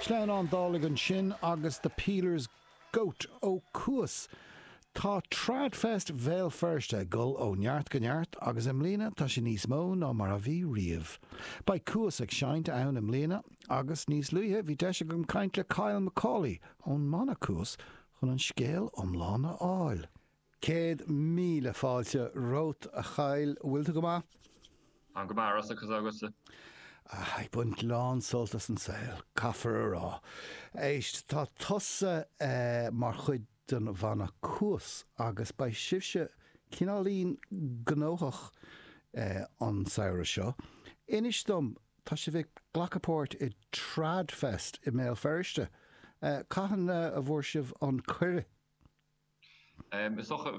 Sleamhnán Dálaigh ansin agus The Peeler's Goat ó Cuas. Tá TradFest Bhéal Feirste ag dul ó neart go neart agus i mbliana tá sé níos mó ná mar a bhí riamh. Beidh Cuas ag seinnt ann i mbliana agus níos luaithe bhí deis agam caint le Kyle Macaulay ón mbanna Cuas chun an scéal iomlán a fháil. Céad míle fáilte romhat, a Kyle. Bhfuil tú go maith? Ana-mhaith, Rossa, conas atá tusa? Ag baint lán sult as an saol, caithfear a rá. Éist, tá tusa mar chuid den bhanna Cuas agus beidh sibhse cineáilín gnóthach an samhradh seo. Inis dom, tá sibh ag glacadh páirt i TradFest i mBéal Feirste? Cathain a bhfuair sibh an cuireadh? Is dócha,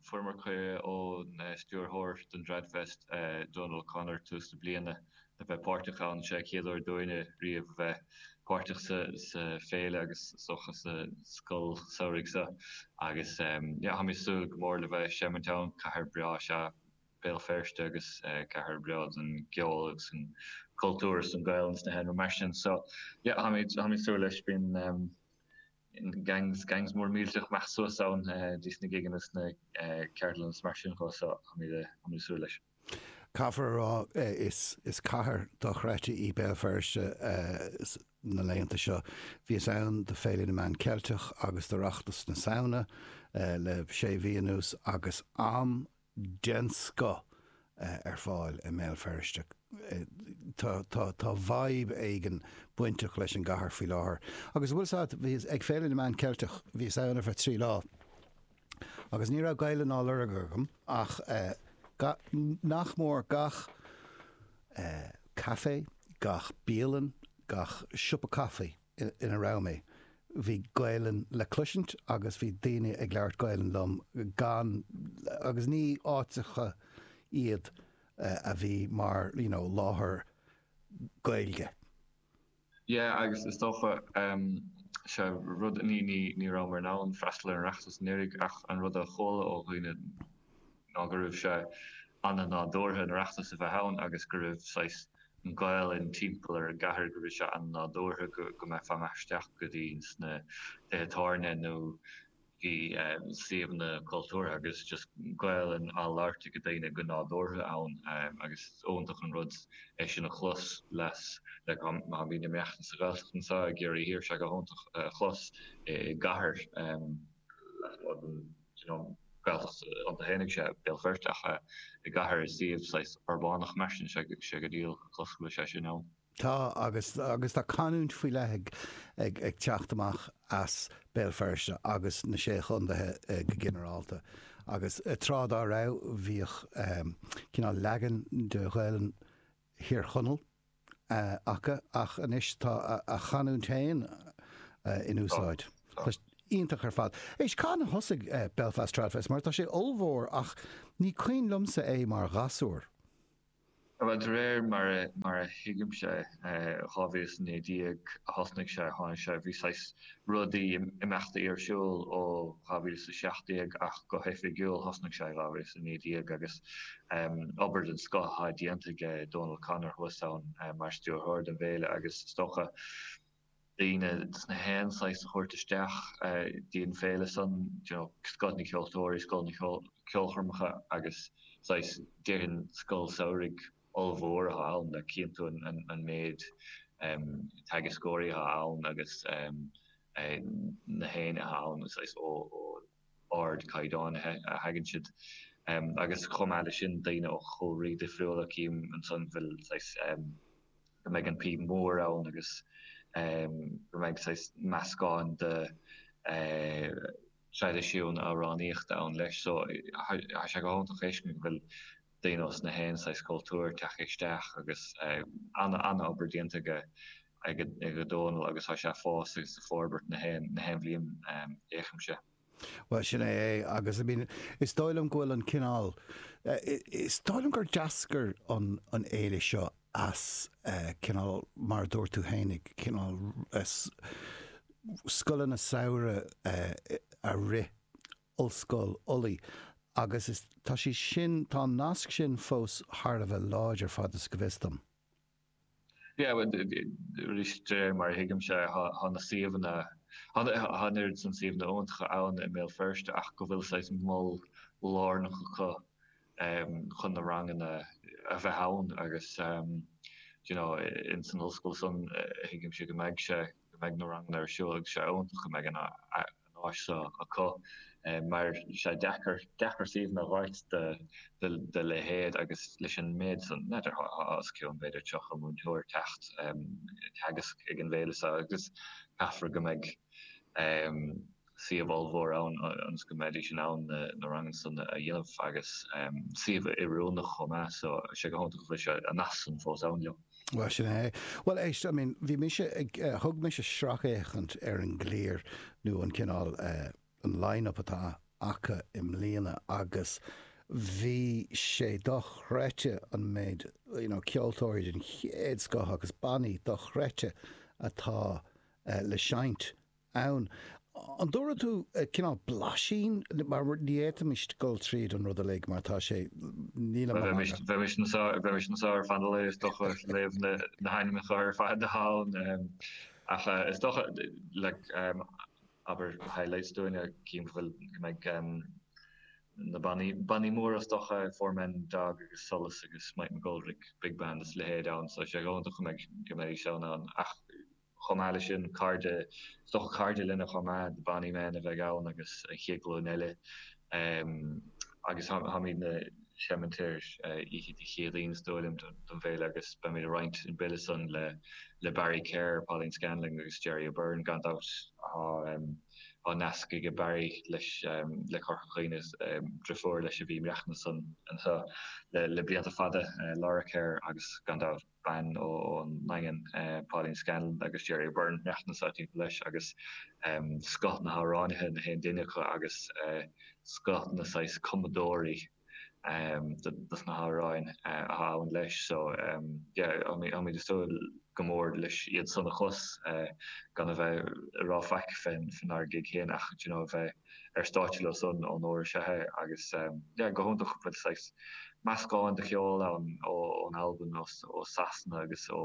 fuaireamar cuireadh ón stiúrthóir don TradFest, Donal O'Connor, tús na bliana, a bheith páirteach ann. Sé an chéad uair dúinne riamh a bheith páirteach sa féile agus is dócha sa scoil samhraidh seo agus táim ag súil go mór le bheith ag seimint ann. Cathair breá is ea Béal Feirste agus cathair bhreá don gceol agus an cultúr is don Ghaelainn is na healaíona mar sin. So táim ag súil leis, bíonn. Gangs, gangs mór millteach amach suas ann dtí sna gigeanna is na ceardlanna is mar sin de so táimid ag súil leis. Caithfear a rá is cathair dochreidte í Béal Feirste na laethanta seo. Bhíos ann do Féile na Meán Ceilteach agus d'Oireachtas na Samhna le sé mhí anuas agus am den scoth ar fáil i mBéal Feirste. Tá vibe éigin bainteach leis an gcathair faoi láthair. Agus a bhfuil 's a'd, bhíos ag Féile na Meán Ceilteach, bhíos ann ar feadh trí lá agus ní raibh Gaeilge ná lorg agam ach nach mór gach café, gach bialann, gach siopa caife, ina raibh mé, bhí Gaelainn le cloisint agus bhí daoine ag labhairt Gaelainn liom gan, agus ní áiteacha iad a bhí mar you know láthair Gaeilge. Yeah agus is dócha, sea, rud, ní rabhamar in ann freastal ar an Oireachtas anuraidh ach an rud a chuala ó dhaoine, ná go raibh sé ana-nádúrtha an Oireachtas a bheith ann agus go raibh saghas an Ghaolainn timpeall ar an gcathair, go raibh sé ana-nádúrtha go mbeifeá amach isteach go dtí sna tithe tábhairne nó i suíomhanna cultúrtha agus just Gaolainn á labhairt ag daoine go nádúrtha ann agus is iontach an rud é sin a chlos, like má bhíonn imeacht sa Ghaeltacht anseo i gCiarraí Thiar, is é go hiontach a chlos i gcathair lasmuigh den. you know Gaeltacht iontu féin ann i mBéal Feirste ach eh i gcathair i suíomh saghas urbánach mar sin sé sé go diail a chlos go bhfuil sé sin ann. Tá agus agus tá canúint faoi leith ag ag ag teacht amach as Béal Feirste agus na Sé Chontaethe go ginearálta agus tráth dá raibh bhíodh eh cineál leagan de Ghaelainn Thír Chonaill acu ach anois tá a chanúint héin in úsáid. Iontach ar fad. Éist, cathain a thosaigh Belfast Tradfest mar tá sé ollmhór ach ní cuimhin liomsa é mar ghasúr. Bhuel, de réir mar a thuigimse, 2019 a thosnaigh sé, tháinig sé, bhí saghas rudaí, imeachtaí ar siúl ó 2017 ach go hoifigiúil thosnaigh sé i 2019 agus obair den scoth á déanamh aige Dónal O'Connor thuas ann mar stiúrthóir don bhféile agus is dócha daoine ós na haon saghas a thabhairt isteach dtí an féile san you know scoth na gceoltóirí, scoth na gceolchoirmeacha agus saghas déarfainn scoil samhraidh ollmhór atá ann, go cinnte an méid teagascóirí atá ann agus na haoinne atá ann, saghas ó ardchaighdeán a thagann siad agus chomh maith le sin daoine ó chúlraí difriúla, cím ansan go bhfuil saghas go mbeidh an píb mór ann agus go mbeidh saghas meascán de traidisiún amhránaíochta ann leis so tá sé go hiontach a fheiscint go bhfuil daoine ós na haon saghas cultúir tagtha isteach agus an-obair déanta aige Dónal agus tá sé fós ag forbairt na haon bhliain a fhéachaimse. Bhuel, sin é é agus I mean is dóigh liom go bhfuil an cineál, is dóigh liom gur d'eascair an fhéile seo as cineál mar a dúirt tú féin, cineál scoileanna samhraidh a rith Ollscoil Uladh agus is, tá sé sin, tá an nasc sin fós thar a bheith láidir, fad is eol dom. Yeah, bhuel, arís, de réir mar a thuigimse, tá na suíomhanna, tá an oiread san suíomhanna iontacha ann i mBéal Feirste ach go bhfuil saghas mol lárnach acu chun na ranganna a bheith ann agus, you know, insan ollscoil san, thuigimse go mbeidh sé, go mbeidh na ranganna ar siúl agus sé iontach go mbeidh an áis seo acu mar sé deacair, deacair suíomhanna a fháilt dá leithéid agus leis an méid san, n'fheadar, os cionn b'fhéidir 30 múinteoir ag teacht ag teagasc ag an bhféile seo agus caithfear go mbeidh. suíomh ollmhór ann ionas go mbeidís in ann na ranganna san a dhéanamh agus suíomh oiriúnach chomh maith so tá sé go hiontach go bhfuil sé, an nasc san fós ann leo. Bhuel, sin é. Bhuel, éist, I mean, bhí mise ag eh, thug mise sracfhéachaint ar an gclár nó an cineál eh, an line up atá acu i mbliana agus bhí sé dochreidte an méid you know ceoltóirí den chéad scoth agus bannaí dochreidte atá eh, le seinnt ann. An dtabharfaidh tú cineál blaisín? Mar ní fhéadfaimis dul tríd an rud uilig mar tá sé. Níl Bhuel, bheimis, bheimis anseo, bheimis anseo ar feadh an lae is docha, ag léamh na, na hainmeacha ar fad ann. Ach is docha, like, abair highlights dúinne cím go bhfuil, go mbeidh na bannaí, bannaí móra is docha, Four Men and a Dog agus Solas agus Mike McGoldrick Big Band is leithéid ann so tá sé go hiontach go mbeidh, go mbeidís ann ann ach, Chomh maith leis sin, cairde, is dócha cairde linne chomh maith, The Bonny Men a bheidh ann agus an chéad ghlúin eile. Agus táimid ag seimint ar oíche Dé Céadaoin is dóigh liom don bhféile agus beimid ag roinnt an bill san le Barry Kerr, Pauline Scanlon agus Gerry O'Beirne gan dabht. Tá nasc aige Barry leis le Corca Dhuibhne, driofúr leis a bhí ina cónaí anseo le blianta fada, Laura Kerr agus gan dabht. bean ón nDaingean, Pauline Scanlon agus Gerry O'Beirne, neacht na Sáirsintí leis, agus scoth na hamhránaithe, nach aon duine acu, agus scoth na saghas cumadóirí dos na hamhráin atá ann leis. So, yeah, táimid ag súil go mór leis iad san a chlos, gan a bheith ag rá faic fénár gig féin ach, d'you know, a bheith. ar stáitse leo san ón uair seo é agus yeah go hiontach go bhfuil saghas meascán de cheol ann ó ón Albain ós ó Sasana agus ó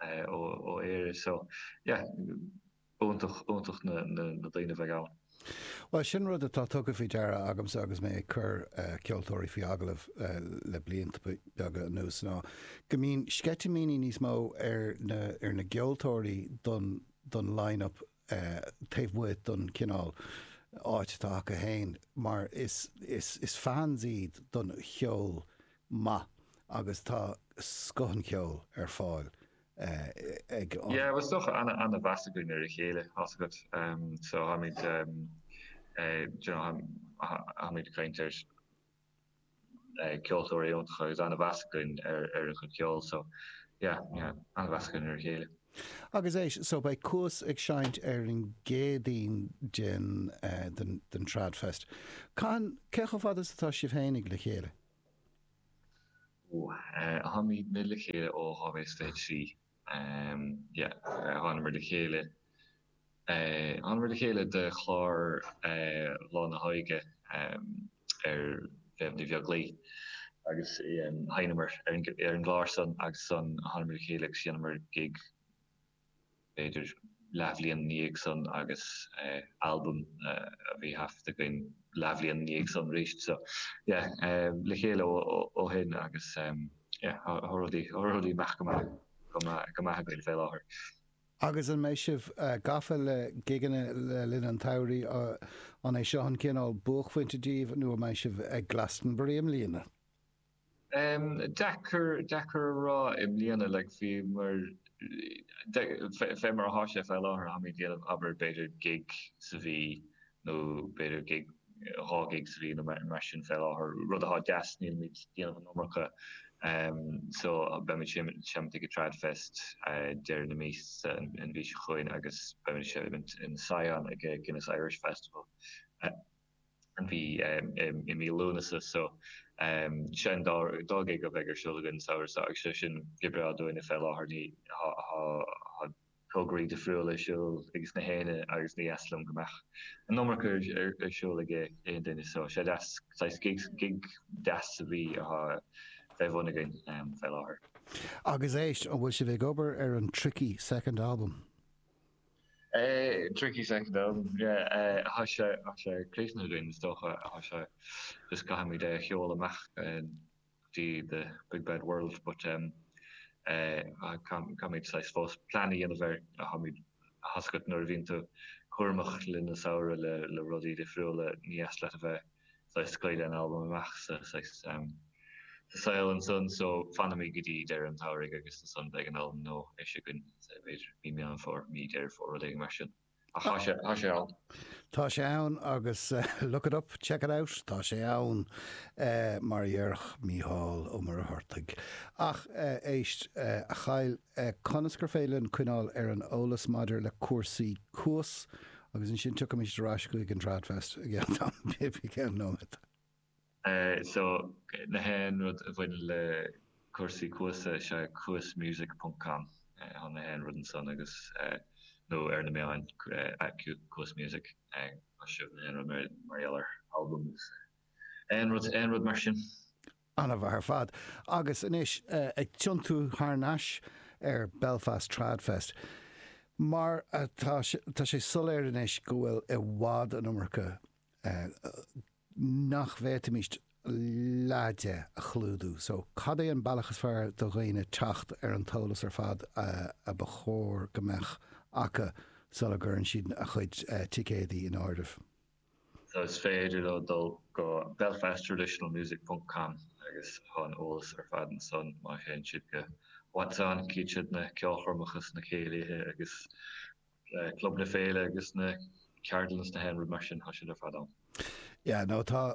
eh ó ó Éirinn so yeah iontach iontach na na na daoine a bheidh ann. Bhuel sin rud atá tugtha faoi deara agamsa agus mé ag cur eh ceoltóirí faoi agallamh eh le blianta beaga anuas ná go mbíonn sceitimíní níos mó ar na ar na gceoltóirí don don line up taobh amuigh den chineál áit atá acu féin mar is is fans iad den cheol maith agus tá scoth an cheoil ar fáil ag an. Yeah, is dócha, an-mheas againn ar a chéile, tá's agat, so táimid, you know, táimid ag caint ar. ceoltóirí iontacha agus an-mheas againn ar a gcuid ceoil so yeah, yeah, an-mheas againn ar a chéile. Agus eh so beidh Cuas ag seinnt ar an gCéadaoin den, den Trad Fest. Cathain, cé chomh fada is atá sibh fhéinig le chéile? Ó, táimidne le chéile ó 2023. yeah thánamar le chéile thánamar le chéile do chlár Lá na hÓige ar Mhéabh Ní Bheaglaoich agus sheinneamar ar an gclár san agus thánamar le chéile agus dheineamar gig b'fhéidir leathbhliain ina dhiaidh san agus albam a bhí thaifeadta againn leathbhliain ina dhiaidh san arís so yeah le chéile ó shin agus yeah tá rudaí rudaí ag imeacht go maith go maith go maith againn fé láthair. Agus an mbeidh sibh gafa le gigeanna le linn an tsamhraidh, an é seo an cineál buaicphointe daoibh nó an mbeidh sibh ag Glastonbury i mbliana? Deacair, deacair a rá. I mbliana, like, fé mar, fé mar atá sé fé láthair, táimid ag déanamh, abair, b'fhéidir gig sa mhí nó b'fhéidir gig, dhá gig sa mhí nó mar sin fé láthair, rud atá deas, nílimid déanamh an iomarca, so beimid seimint ag an Tradfest deireadh na míosa an mhí seo chugainn agus beimid seimint in Sion ag an Guinness Irish Festival. bhí i mí Lúnasa so sin an dá ghig a bheidh ar siúl againn an samhradh seo agus sé sin go breá dúinne fé láthair mar tá tograí difriúla ar siúl ag nach éinne agus ní deas liom go mbeadh an iomarca ar siúl ag aon duine so sé deas saghas gig gig deas sa mhí atá fé bhun againn fé láthair. Agus éist, an bhfuil sibh ag obair ar an 'tricky second album'? Tricky second album. Tá sé críochnaithe againn is dócha, tá sé, just caithfimid é a sheoladh amach go dtí the big bad world but caithfimid saghas fós plean a dhéanamh air, caithfimid tá a fhios agat nuair a bhíonn tú cúramach le linn an samhradh le rudaí difriúla, ní deas leat a bheith. saghas scaoileadh an albam amach sa saghas sa saol ansan so fanfaimid go dtí deireadh an tsamhraidh agus ansan beidh an albam nua-ish againn saghas b'fhéidir mí Meán Fómhair, mí Deireadh Fómhair rud éigin mar sin ach tá sé, tá sé ann. Tá sé ann agus look it up, check it out, tá sé ann mar a dhéarfadh Mícheál Ó Muircheartaigh. Ach éist, a Kyle, e Conas gur féidir linn coinneáil ar an eolas maidir le cúrsaí Cuas agus ansin tiocfaimid ar ais chuig an Tradfest i gceann tamaill bhig, i gceann nóiméad. e So nach aon rud a bhaineann le cúrsaí Cuas e is ea cuasmusic ponc com e chun nach aon rud ansan agus e nó ar na meáin e cuasmusic e gheobhaidh sibh nach aon rud mar gheall ar albam agus e aon rud, aon rud mar sin. An-mhaith ar fad. Agus anois ag tiontú thar n-ais ar Belfast Trad Fest. Mar atá, tá sé soiléir anois go bhfuil i bhfad an iomarca nach bhféadfaimís leath de a chlúdú. So, cad é an bealach is fearr do dhaoine teacht ar an t-eolas ar fad a ba chóir go mbeadh acu sula gcuireann siad a gcuid ticéadaí in áirithe? So is féidir leo dul go belfasttraditionalmusic.com agus tá an t-eolas ar fad ansan má théann siad go What's-On, cífidh siad na ceolchoirmeacha is na céilithe agus club na féile agus na ceardlanna is aon rud mar sin, tá siad ar fad ann. Yeah, no, tá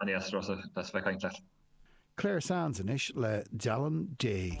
An é as Ros a' Bhreacáin ceart? Clare Sands anois le Dealán Dé.